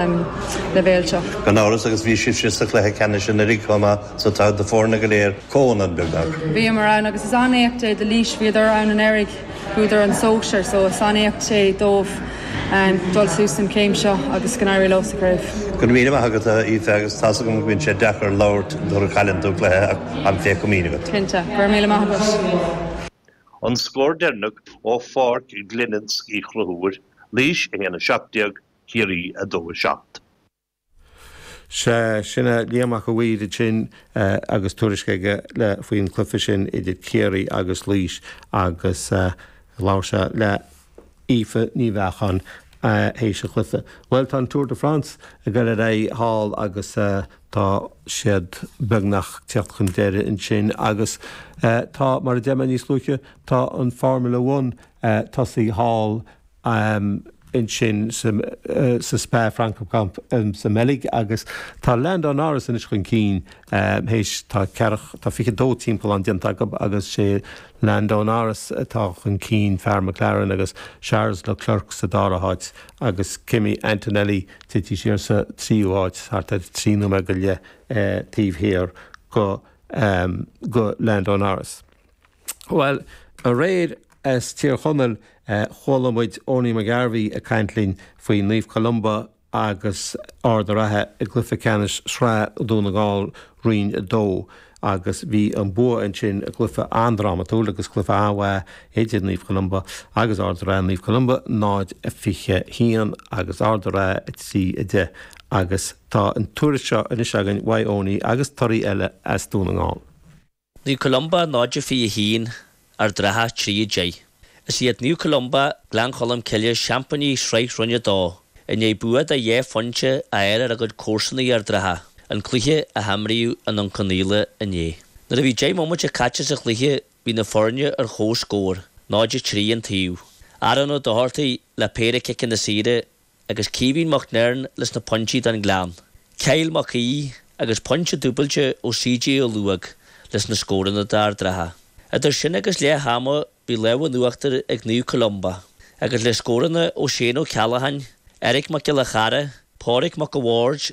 leibhéal seo. Gan amhras agus bhí sibhse sa chluiche ceannais anuiridh comh maith so tá na foirne go léir, comhionann, beagnach. Bhíomar ann agus is an-éacht é do Laois, bhíodar ann anuiridh, bhuadar an sóisear so is an-éacht é dóibh dul suas an chéim seo agus go n-éirí leo sa gcraobh. Go raibh míle maith agat, a Aoife, agus tá's agam go mbíonn sé deacair labhairt nuair a chailleann tú cluiche ach táim phéca mín agat. Cinnte. Go raibh míle maith agat. An scór deireanach ó Pháirc Glenisk Uí Chonchúir, Laois 1, 17, Ciarraí 2, 7. Sea, sin é Liam 'Ac a' Mhaoir ansin agus tuairisc aige le, faoin chluife sin idir Ciarraí agus Laois agus labhair sé le hAoife Ní Bheacháin théis an chluife. Bhuel, tá an Tour de France ag dul ar aghaidh thall agus tá siad beagnach ag teacht chun deiridh ansin agus tá, mar a deir mé níos luaithe, tá an Formula One tosaithe thall ansin sa Spa Francorchamps sa mBeilg agus tá Lando Norris anois chun cinn théis tá ceathracha, tá 22 timpeallán déanta acu agus sé Lando Norris atá chun cinn, fear McLaren agus Charles Leclerc sa dara háit agus Kimi Antonelli tite siar sa tríú háit thart ar trí nóiméad go leith taobh thiar go Lando Norris. Bhuel, aréir as Tír Chonaill chuala muid Owenie McGarvey ag caint linn faoi Naomh Columba agus Ard an Rátha i gcluiche ceannais Sraith Dún na nGall Roinn 2 agus bhí an bua ansin, cluiche an-drámatúil agus cluiche an-mhaith idir Naomh Columba agus Ard an Rátha, Naomh Columba 0, 21 agus Ard an Rátha 3, 10 agus tá an tuairisc seo anois againn uaidh Owenie agus torthaí eile as Dún na nGall. Naomh Columba 0 21 Ard an Rátha 3 10 Is iad Naomh Columba, Gleann Cholm Cille seaimpíní Shraith Roinn 2 i ndiaidh bua de dhá phointe a fháil ar a gcuid comharsanaí Ard an Rátha, an cluiche a himríodh i nDún Cionnaola inné. Nuair a bhí deich mbomaite caite sa chluiche bhí na foirne ar chomhscór, 0 3 an taobh. Aaron Ó Dochartaigh le péire ciceanna saoire agus Caoimhín Mac Neirin leis na pointí don Gleann, Kyle Mac Aoidh agus pointe dúbailte ó CJ Ó Laoghóg leis na scóranna d'Ard an Rátha. Idir sin agus leath ama bhí lámh in uachtar ag Naomh Columba agus le scóranna ó Shane Ó Ceallacháin, Eric Mac Giolla Chearra, Pádraig Mac a' Bhaird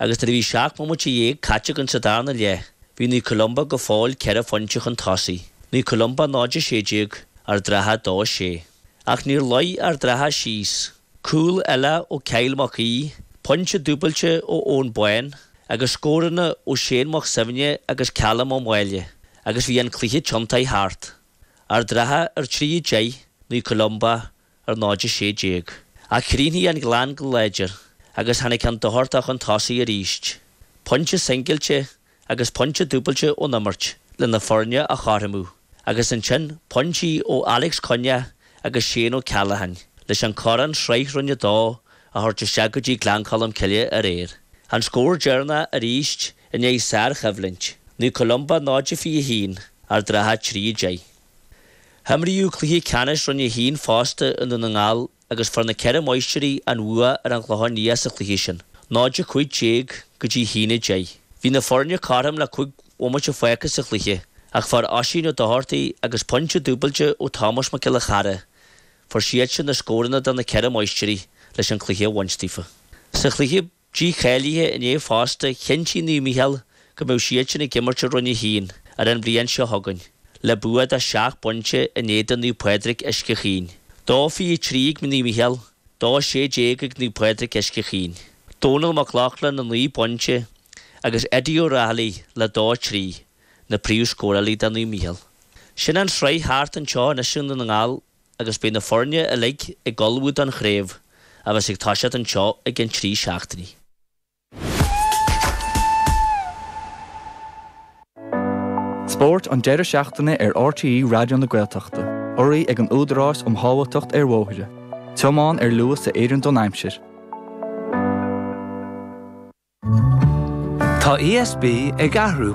Agus nuair a bhí seacht mbomaite dhéag caite againn sa darna leath, bhí Naomh Columba go fóill ceithre phointe chun tosaigh. Naomh Columba 0 16 Ard an Rátha 2 6. Ach níor luigh Ard an Rátha síos. Cúl eile ó Kyle Mac Aoidh, pointe dúbailte ó Eoin Boyne, agus scóranna ó Shane Mac Suibhne agus Calum Ó Maoile, agus bhí an cluiche tiontaithe thart. Ard an Rátha ar 3 10, Naomh Columba ar 0 16. Ach chríochnaigh an Gleann go láidir agus tháinig an Dochartach 'un tosaigh arís. Pointe singilte agus pointe dúbailte ón imirt le na foirne a chothromú agus ansin pointí ó Alex Cunnea agus Shane Ó Ceallacháin leis an Corn Sraith Roinn a Dó a thabhairt isteach go dtí Gleann Cholm Cille aréir. An scór deireannach arís i ndiaidh sár-choimhlint, Naomh Columba 0 21, Ard an Rátha 3 10. Imríodh cluiche ceannais Roinn 1 fosta i nDún na nGall agus fuair na Ceithre Máistirí an bhua ar an gClochán Liath sa chluiche sin, 0 15 go dtí 1 10. Bhí na foirne cothrom le cúig bhomaite fágtha sa chluiche ach fuair Oisín Ó Dochartaigh agus pointe dúbailte ó Thomás Mac Giolla Chearra, fuair siadsan na scóranna do na Ceithre Máistirí leis an cluiche a bhaint daofa. Sa chluiche. dícháilithe inné fosta, chinntigh Naomh Micheál go mbeidh siadsan ag imirt i Roinn 1 ar an bhliain seo chugainn, le bua de sheacht bpointe in éadan Naomh Pádraig Uisce Chaoin. Dó 23 ag Naomh Micheál, dó 16 ag Naomh Pádraig Uisce Chaoin. Dónal Mac Lochlainn le naoi bpointe agus Eddie Ó Raghallaigh le dó 3, na príomhscórálaithe do Naomh Micheál. Sin an tsraith thart anseo anois i nDún na nGall. agus beidh na foirne uilig ag ullmhú don chraobh a bheas ag toiseacht anseo i gceann trí seachtainí. Spórt an deireadh seachtaine ar RTÉ Raidió na Gaeltachta. Urraithe ag an Údarás um Shábháilteacht ar Bhóithre. Tiomáin ar luas a oireann don aimsir. Tá ESB ag athrú.